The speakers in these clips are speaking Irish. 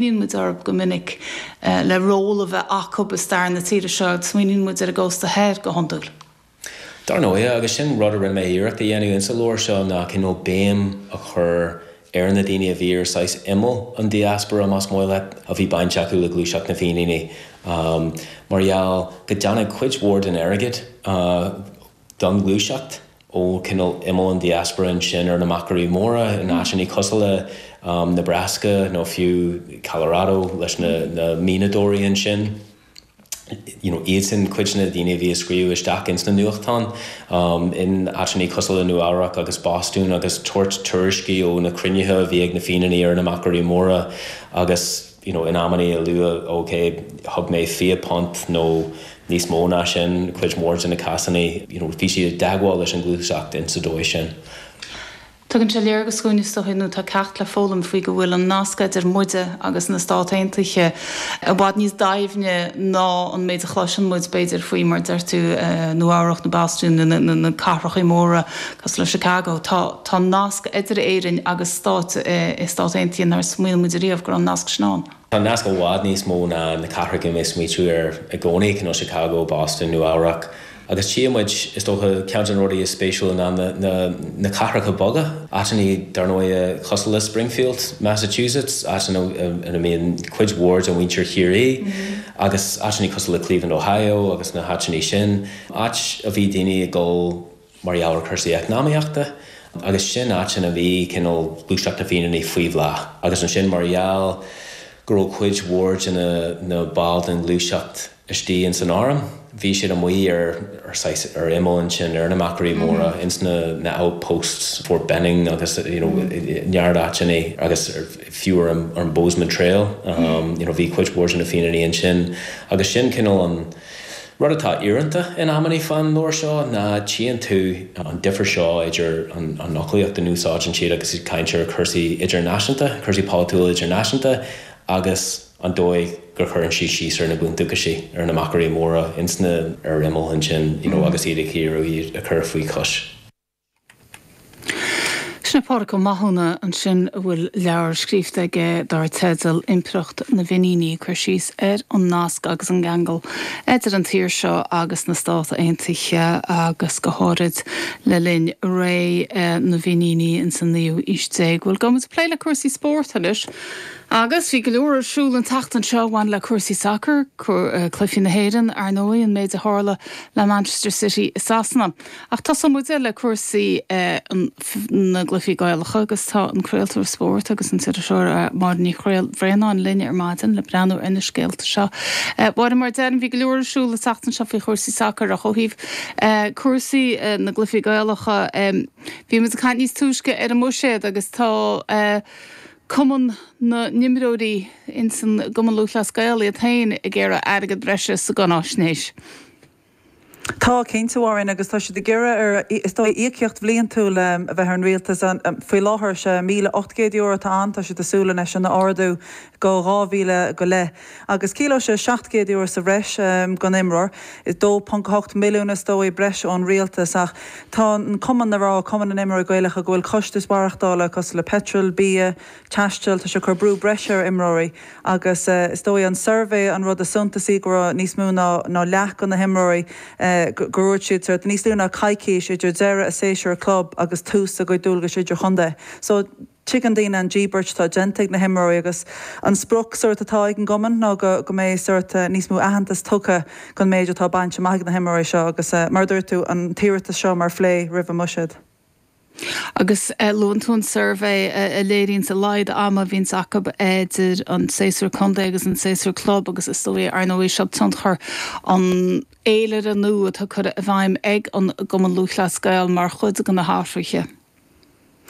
Smaoiníonn muid orthu b'fhéidir go minic le ról a bheith acu i stair na tíre seo, smaoiníonn muid ar an gcósta thoir go hiondúil. Dar ndóigh, agus sin rud a rinne mé iarracht a dhéanamh insa leabhar seo, ná cineál béim a chur ar na daoine a bhí ar saghas imeall an diaspora, más maith leat, a bhí bainteach le gluaiseacht na bhFíníní mar gheall go dtáinig cuid mhór den airgead, don ghluaiseacht ó cineál imeall an diaspora ansin ar na Machairí Móra, in áiteannaí cosúil le Nebraska nó fiú Colorado leis na mianadóirí ansin, you know, iadsan cuid de na daoine a bhí ag scríobh isteach ins na nuachtáin, in áiteannaí cosúil le Nua Eabhrac agus Bostún agus tabhairt tuairiscí ó na cruinnithe a bhí ag na Fíníní ar na Machairí Móra agus. you know In amannaí a luadh ok thug mé fiche punt nó níos mó ná sin cuid mhór de na cásanna you know bhí siad i dteagmháil leis an gluaiseacht ins sa dóigh sin. Tugann sé léargas dhúinn is dóigh nó tá ceacht le foghlaim faoi go bhfuil an nasc idir muide agus na Stát Aontaithe i bhfad níos doimhne ná an méid a chloiseann muid b'fhéidir faoi mar deir tú Nua Eabhrac nó Bostún nó na cathrachaí móra Cosúil le Chicago, tá nasc idir Éirinn agus stáit sna Stáit Aontaithe nár smaoinigh muid ariamh go raibh an nasc sin ann. Tá an nasc i bhfad níos mó ná na cathracha go mbeadh smaointiú air i gcónaí, cineál Chicago, Boston, Nua Eabhrac. Agus tchí muid, is dócha, ceann de na rudaí is spéisiúla ná na cathracha beaga, áiteannaí, dar ndóighe, cosúil le Springfield, Massachusetts, áiteanna ina mbíonn cuid mhór de mhuintir Chiarraí, agus áiteannaí cosúil le Cleveland, Ohio, agus na háiteannaí sin, áit a bhí daoine ag dul. mar gheall ar chúrsaí eacnamaíochta agus sin áit ina bhí cineál gluaiseacht na bhFíníní faoi bhláth agus ansin mar gheall go raibh cuid mhór de na baill den ghluaiseacht istigh ins an Arm bhí siad amuigh ar saghas ar imeall ansin ar na machairí móra ins na outposts Fort Benning agus you know neart áiteannaí agus fiú ar an Bozeman Trail you know bhí cuid mhór de na Fíníní ansin agus sin cineál an Rud atá íorónta in amannaí fán leabhar seo ná tchíonn tú an difear seo idir an fhoclaíocht a úsáideann siad agus iad caint ar chúrsaí idirnáisiúnta, cúrsaí polaitiúla idirnáisiúnta agus an dóigh go gcuireann siad síos ar na bundúchasaigh, ar na machairí móra ins na, ar imeall ansin, you know, agus iad ag iarraidh iad a chur faoi chois. Sin é Pádraig Ó Mathúna ansin a bhfuil leabhar scríofa aige dar teideal Impireacht na bhFíníní ag cur síos ar an nasc agus an gceangal idir an tír seo agus na Stáit Aontaithe agus go háirid le linn ré na bhFíníní ins an naoú aois déag. Bhuel, gabhfaidh muid ag plé le cúrsaí spórt anois agus bhí go leor ar siúl an tseachtain seo a bhain le cúrsaí sacair, cluichí na hÉireann, ar ndóigh, an méid a tharla le Manchester City i Sasana. Ach tosóidh muide le cúrsaí na gcluichí Gaelacha agus tá an craoltóir spóirt agus an t-iriseoir Máire Ní Bhraonáin linn ar maidin le breathnú ar na scéalta seo. A Mháire, mar a deirim, bhí go leor ar siúl an tseachtain seo faoi chúrsaí sacair ach ó thaobh cúrsaí na gcluichí Gaelacha, bhí muid ag caint níos túisce ar an mbuiséad agus tá cumann na n-imreoirí ins an gCumann Lúthchleas Gael iad féin ag iarraidh airgead breise sa gcáináisnéis. Tá, cinnte, a Mháirín, agus tá siad ag iarraidh ar, is dóigh, íocaíocht bhliantúil a bheith ar an rialtas. Faoi láthair is é €1,800 atá ann, tá siad ag súil anois sin a ardú go 2,000 go leith, agus ciallóidh sé €700 sa bhreis don imreoir. 2.8 milliún, is dóigh, breise ón rialtas, ach tá an cumann ag rá, Cumann na nImreoirí Gaelacha, go bhfuil costais mhaireachtála cosúil le peitreal, bia, taistil. Tá sé ag cur brú breise ar imreoirí agus is dóigh an suirbhé an rud is suntasaí go raibh níos mó ná leath de na himreoirí gur dhúirt siad sórt níos lú ná coicís idir deireadh a séasúr club agus tús a gcuid dualgais idirchontae. So tuigeann daoine an íobairt atá déanta ag na himreoirí agus an sprioc sórt atá ag an gcumann ná go mbeidh sórt níos mó aitheantas tugtha don méid atá bainte amach ag na himreoirí seo agus mar a dúirt tú an t-iarratas seo mar phlé roimh an mbuiséad. Agus luann tú an suirbhé a léiríonns a laghad ama a bhíonns acu idir an séasúr contae agus an séasúr club agus is dóigh, ar ndóigh, seo tionchar an fhéilire nua atá curtha i bhfeidhm ag an gCumann Lúthchleas Gael mar chuid de na hathruithe.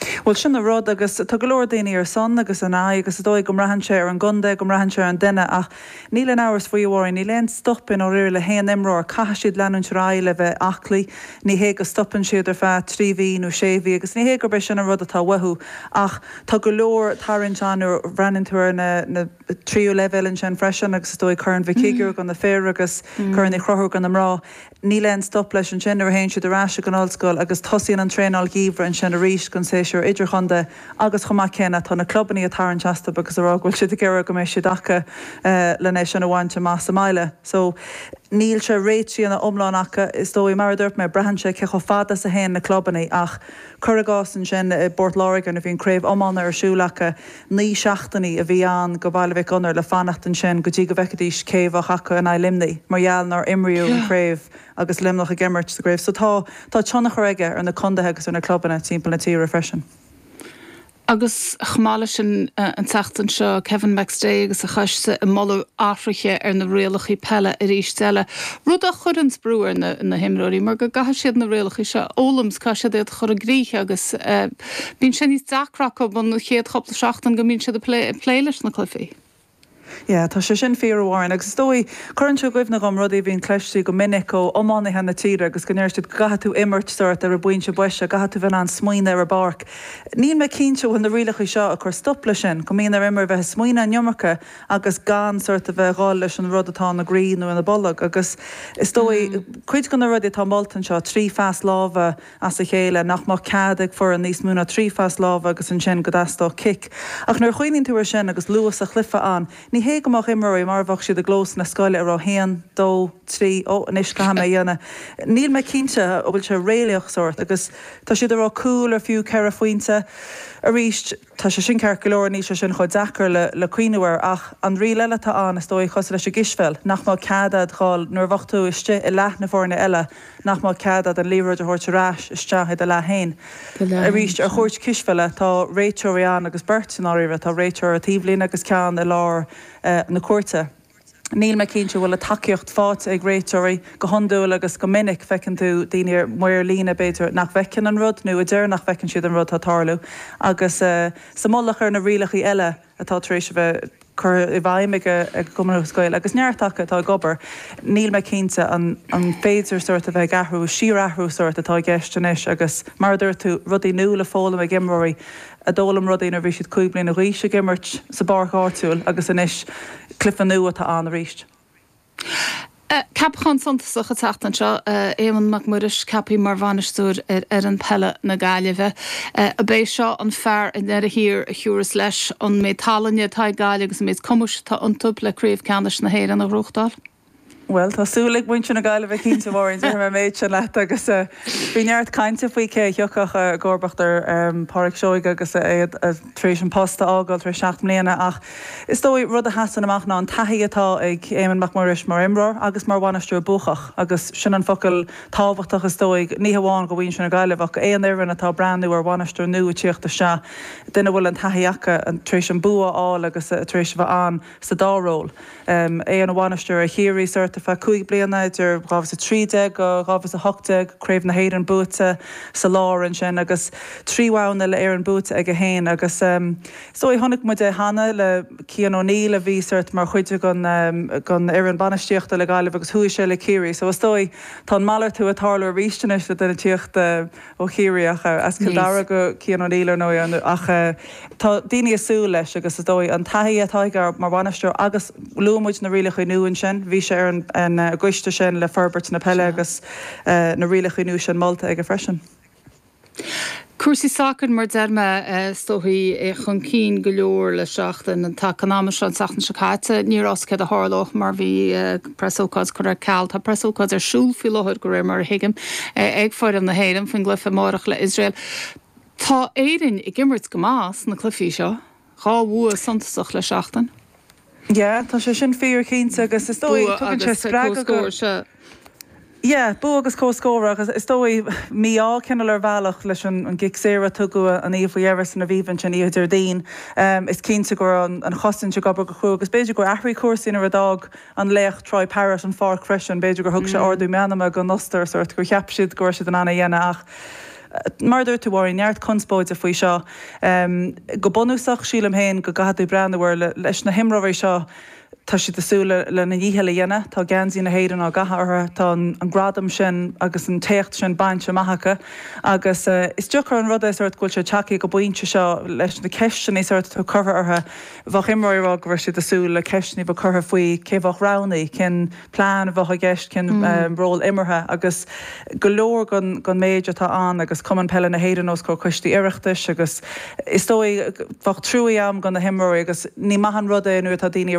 Bhuel, sin an rud agus tá go leor daoine ar son agus in aghaidh agus is dóigh go mbraitheann sé ar an gcontae, go mbraitheann sé ar an duine ach Níl aon amhras faoi, a Mháirín, níl aon stop i ndáiríre le haon imreoir. Caithfidh siad leanúint ar aghaidh le bheith aclaí. Ní hé go stopann siad ar feadh trí mhí nó sé mhí agus ní hé gurb é sin an rud atá uathu ach tá go leor tarraingt ann nuair a bhreathnaíonn tú ar na tríú leibhéal ansin freisin agus is dóigh Corn Mhic Shigiúir do na fir agus Corn Uí Chonchúir do na mná. Níl aon stop leis ansin nuair a théann siad ar ais ag an ollscoil agus tosaíonn an traenáil gheimhridh ansin arís don séasúr idirchontae agus chomh maith céanna tá na clubannaí ag tarraingt astu agus ag rá go bhfuil siad ag iarraidh go mbeidh siad acu len é sin a bhaint amach sa mbaile so níl sé réitithe ina iomlán acu is dóigh. Mar a dúirt mé, braitheann sé cé chomh fada is a théann na clubannaí ach cur i gcás ansin i bPort Láirge nuair a bhíonn craobh iomána ar siúl acu, Naoi seachtainí a bhí ann do Bhaile Mhic Gonair le fanacht ansin go dtí go bhfeicfidís cé a bheadh acu in aghaidh Luimnigh mar gheall nár imríodh an chraobh agus Luimneach ag imirt sa gcraobh. So tá tá tionchar aige ar na contaetha agus ar na clubanna timpeall na tíre freisin. Agus chomh maith leis sin an tseachtain seo, Kevin McStay agus a choiste ag moladh athruithe ar na rialacha peile arís eile, rud a chuireanns brú ar na himreoirí mar go gcaithfidh siad na rialacha seo a fhoghlaim 's caithfidh siad iad a chur i gcrích agus eh, Bíonn sé níos deacra acub an chéad chúpla seachtain go mbíonn siad ag plé, ag plé leis na cluifí. Yeah, tá sé sin fíor, a Mháirín. Agus is dóigh, cuireann sé i gcuimhne dhom rudaí a bhíonn cloiste go minic ó iománaithe na tíre agus go ndeir siad go gcaithfidh tú imirt sórt ar an bpointe boise, gcaithfidh tú bheith in ann smaoineamh ar an bpáirc. Níl mé cinnte an bhfuil na rialacha seo ag cur stop leis sin, go mbíonn ar imreoir bheith ag smaoineamh an iomarca agus gan sórt a bheith ag dhul leis an rud atá ina gcroí nó ina bolg agus is dóigh, cuid de na rudaí atá molta anseo, trí phas láimhe, as a chéile, nach mbeadh cead ag foireann níos mó ná trí phas láimhe agus ansin go dteastódh cic. Ach nuair a chuimhníonn tú air sin agus luas an chluife ann, ní hé go mbeadh imreoirí mar a bheadh siad i gclós na scoile ag rá haon, dó, trí, ó anois caithfidh mé é a dhéanamh. Níl mé cinnte an bhfuil sé réalaíoch sórt agus tá siad ag rá cúl ar fiú ceithre phointe arís. Tá sé sin ceart go leor, níl sé sin chomh deacair le cuimhniú air, ach an riail eile atá ann, is dóigh, cosúil leis an gcispheil, nach mbeadh cead agat dhul nuair a bheadh tú istigh i leath na foirne eile, nach mbeadh cead agat an liathróid a thabhairt ar ais isteach i do leath féin. Arís, ar chúirt cispheile, tá réiteoirí ann agus beirt, i ndáiríre, tá réiteoir taobhlíne agus ceann i lár na cúirte. Níl mé cinnte an bhfuil an tacaíocht faighte ag réiteoirí. Go hiondúil agus go minic feiceann tú duine, maor líne, b'fhéidir, nach bhfeiceann an rud, nó a deir nach bhfeiceann siad an rud atá ag tarlú. Agus sa mullach ar na rialacha eile atá tar éis a bheith curtha i bhfeidhm ag an gCumann Lúthchleas Gael, agus neart acu atá ag obair, níl mé cinnte an féidir sórt a bheith ag athrú, síorathrú sórt atá i gceist anois agus, mar a dúirt tú, rudaí nua le foghlaim ag imreoirí. a d'fhoghlaim rudaí nuair a bhí siad cúig bliana d'aois ag imirt sa bpáirc áitiúil agus anois claochlú atá ann arís. Ceapachán suntasach an tseachtain seo, Éamonn Mac Muiris ceaptha mar bhainisteoir ar fhoireann peile na Gaillimhe. Ab é seo an fear i ndeireadh thiar a thabharfas leis an méid tallainne atá ag Gaillimh agus an méid cumais atá iontu le Craobh Ceannais na hÉireann a ghnóthachtáil? Bhuel, tá súil ag muintir na Gaillimhe cinnte, a Mháirín, déarfaidh mé an méid sin leat. Agus bhí neart cainte faoi cé a thiocfadh i gcomharbacht ar Phádraic Seoige agus é tar éis an post a fhágáil tar éis seacht mbliana ach is dóigh rud a sheasann amach ná an taithí atá ag Éamonn Mac Muiris mar imreoir agus mar bhainisteoir buacach agus sin an focal tábhachtach is dóigh, ní hamháin do mhuintir na Gaillimhe ach aon fhoireann atá ag breathnú ar bhainisteoir nua ag tíocht isteach, duine a bhfuil an taithí acu tar éis an bua a fháil agus tar éis a bheith ann. sa dá ról, é ina bhainisteoir ar Chiarraí sórt ar feadh cúig bliana, idir 2013-2018, Craobh na hÉireann buaite sa lár ansin agus trí bhonn uile-Éireann buaite aige féin agus is dóigh, chonaic muid é cheana le Cian O'Neill a bhí sórt mar chuid den fhoireann bainistíochta le Gaillimh agus chuaigh sé le Ciarraí so is dóigh, tá an malartú ag tarlú arís anois le duine ag tíocht. ó Chiarraíoch, as Cill Dara go Cian O'Neill, ar ndóigh, ach tá daoine ag súil leis agus is dóigh an taithí atá aige mar bhainisteoir agus luaigh muid na rialacha nua ansin, bhí sé ar an gcoiste sin le forbairt na peile agus na rialacha nua sin molta aige freisin. Cúrsaí sacair, mar a deir mé, is dóigh, chun cinn go leor le seachtain. An t-am seo an tseachtain seo caite, ní raibh a fhios céard a tharlódh mar bhí. Preasócáid curtha ar ceal. Tá preasócáid ar siúl faoi láthair, de réir mar a thuigim, ag foireann na hÉireann faoin gcluiche amárach le Iosrael. Tá Éirinn ag imirt go maith sna cluichí seo, dhá bhua suntasach le seachtain. Yeah, tá sé sin fíor cinnte agus is dóigh tugann sé spreagadh go. Yeah, bua agus comhscór agus, is dóigh, mí-ádh cineál ar bhealach leis an gcic saor a tugadh an oíche faoi dheireadh san Aviva ansin, oíche Déardaoin. Is cinnte go raibh an chosaint ag obair go cruaidh agus b'fhéidir gur athraigh cúrsaí nuair a d'fhág an laoch Troy Parrott an pháirc freisin. B'fhéidir gur thug sé ordú meanma don Ostair, sórt, gur cheap siad go raibh siad in ann é a dhéanamh ach, mar a dúirt tú, a Mháirín, neart conspóide faoi seo. Go bunúsach, sílim féin go gcaithfidh tú breathnú air leis na himreoirí seo Tá siad ag súil lena ndícheall a dhéanamh, tá geansaí na hÉireann á gcaitheamh orthu, tá an gradam sin agus an t-éacht sin bainte amach acu agus is deacair an rud é go bhfuil siad tagtha ag an bpointe seo leis na ceisteanna atá curtha orthu. Bheadh imreoirí ag rá go raibh siad ag súil le ceisteanna a bheith curtha faoi cé a bheadh roghnaithe, cén plean a bheadh i gceist, cén ról imeartha agus go leor den méid atá ann agus Cumann Peile na hÉireann os comhair coistí Oireachtais agus is dóigh bheadh truaí agat do na himreoirí agus ní maith an rud é nuair atá daoine ag rá